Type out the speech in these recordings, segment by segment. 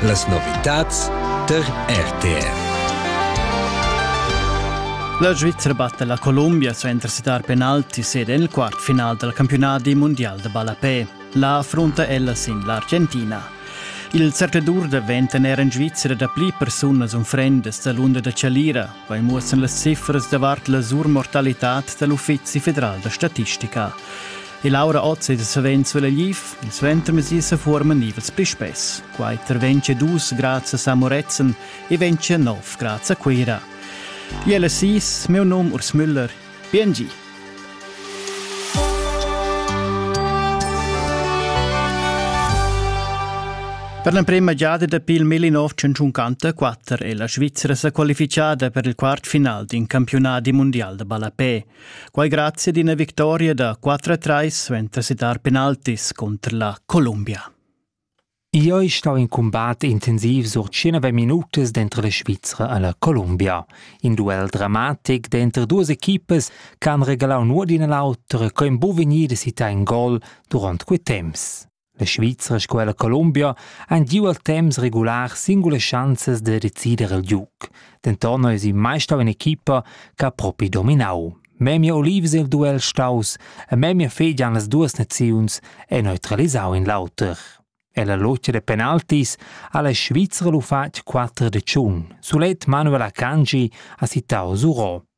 Las novitads tar RTR. La Svizzera batte la Colombia su entras dar penalti sede nel quart final del campionati mondial de ballapè. La affronta ella sin l'Argentina. Il cercladur da venten era in Svizzera da pli persunas unfrendas da l'unda da Chalira, vai muossan las cifras davart la surmortalitad dell'Uffizi federal da statistica. E Laura Otz ed savens sulla Liv, il suentermesi sa forman nivels pli spess. Quai terventscha dus grazia a Moretzen e ventscha nov grazia a Cuira. Jelle Sis, meu num Urs Müller. Biengi! Per l'emprema giada dapi il 1954 è la Svizzera sa qualifichada per il quart final d'un campionat di mondial da ballapé. Quai grazie ad ina victoria da 4-3 suenter sedar penaltis contr la Columbia. Io è stau in combat intensiv sur 19 minutas dentro la Svizzera alla Columbia. In duel dramatic dentro duas equipas che han regalau nuot d'ina l'autra co in buv vegnir da citar in gol durant quei temps. La Svizra sco er la Columbia han giu al temps regular singulas schanzas da decider il giug. Denton eisi mai stau in'equipa che ha propi dominau. Memia Olives il duel staus e memia fegian las duas naziuns e neutralisau in l'auter. E la locia de penaltis ha la Svizra lu fatg 4 de tschun. Sulet Manuel Akanji ha sittau Zuro.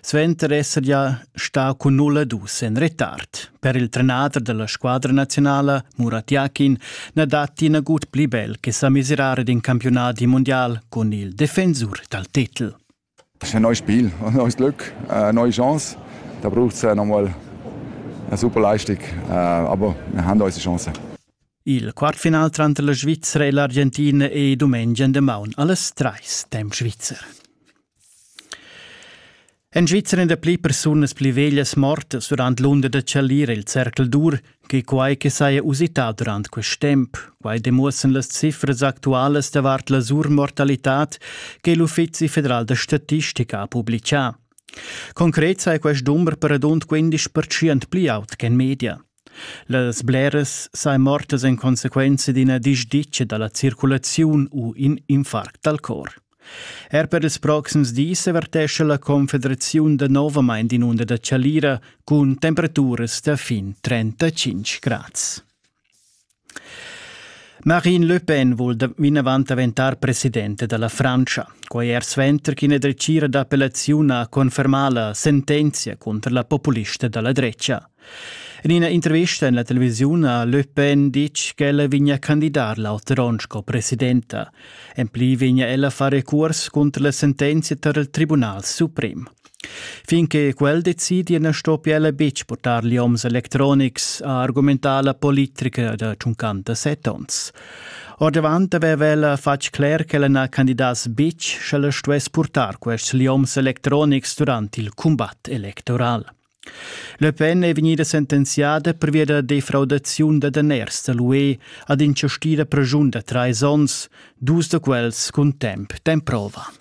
Suenter esser gia stà cun 0-2 en retard. Per il trenader della squadra nazionala, Murat Yakin, na datti nagut pli bel che sa miserare d'in campionati mondial con il defensur dal titel. Das ist ein neues Spiel, ein neues Glück, eine neue Chance. Da braucht es nochmal eine super Leistung, aber wir haben unsere Chance. Il quartfinal tranter la Svizzera e l'Argentina è domenica de maun alles treis dem Schweizer. En Svizra èn dapli persunas pli veglias mortas durant l'unda da chalir il cercl dur che quai che saja usità durant quest temp. Quai demuossan las cifras actualas davart la surmortalitad che l'Uffizi federal da statistica ha publicà. Concret sai quest dumber per radund 15% pli aut ch'en media. Las bleras sajan mortas en consequenza d'ina disditga da la circulaziun u in infarct dal cor. Er per ils proxims dis avertescha la Confederaziun danovamain in'unda da chalira cun temperaturas da fin 35 grads. Marine Le Pen vul vinavant daventar presidenta da la Frantscha. Quai er suenter ch'ina dretgira d'appellaziun ha confermà la sentenzia cunter la populista da la drecha. En ina intervista en la televisiun ha Le Pen ditg ch'ella vegnia candidar l'auter onn sco presidenta. En pli vegnia ella a far recurs cunter la sentenzia tar il Tribunal suprem. Fin che quel decidi na stoppia ella betg portar lioms electronics, ha argumentà la politica da 57 onns. Ordavant aveva ella fatg cler ch'ella na candidass betg sch'ella stuess purtar quests lioms electronics durant il cumbat electoral. Le Pen è vegnida sentenziada pervia da defraudaziun da daners da l'UE ad in gestida pregiun da trais onns, dus da quels cun temp d'emprova.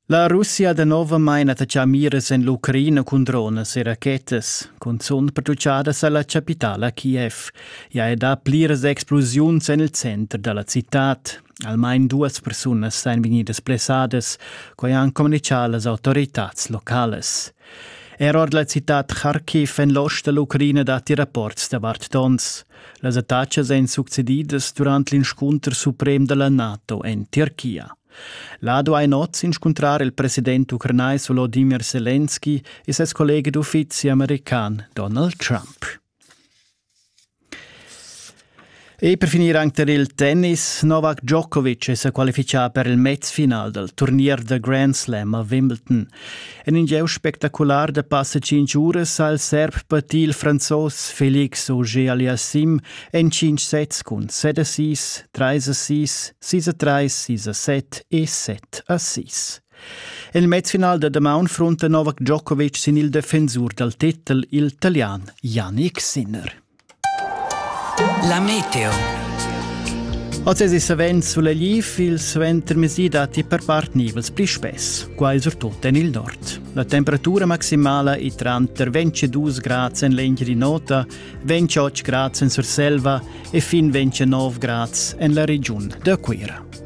La Russia danovamein attaccà miras en l'Ucraina cun dronas e rachetas, cunzunt produciadas alla capitala Kiev. Ja è da pliras explosiuns en il center dalla citad. Almain duas persunas ein vegnidas blessadas, quei han communichà las autoritats locales. Er ord la citad Kharkiv en l'ost dall'Ucraina datti rapports davart tons. Las attacas ein succedidas durant l'inscunter suprem dalla NATO en Tirchia. Lado ein oz inscuntrar il president ucranais Volodymyr Zelensky e ses kollege d'uffizi american Donald Trump. E per finire anche il tennis, Novak Djokovic è qualificato per il mezfinal del turnier de Grand Slam a Wimbledon. En in gieu spectacular da passa tschintg uras ha il serb patì il franzos Felix Auger Aliassim en cinc sets cun set assist, trais assist, sis a trais, sis a set e set assist. En il mezfinal da damaun frunta Novak Djokovic sin il defensur dal titel il Italian Yannick Sinner. La meteo. Oz es savens sulla liv il suentermezdi datti per part nivels pli spess, quai surtut en il nord. La temperatura maximala è tranter 22 grad en l'Engiadin'Ota, 28 grad en Surselva e fin 29 grad en la regiun da Cuira.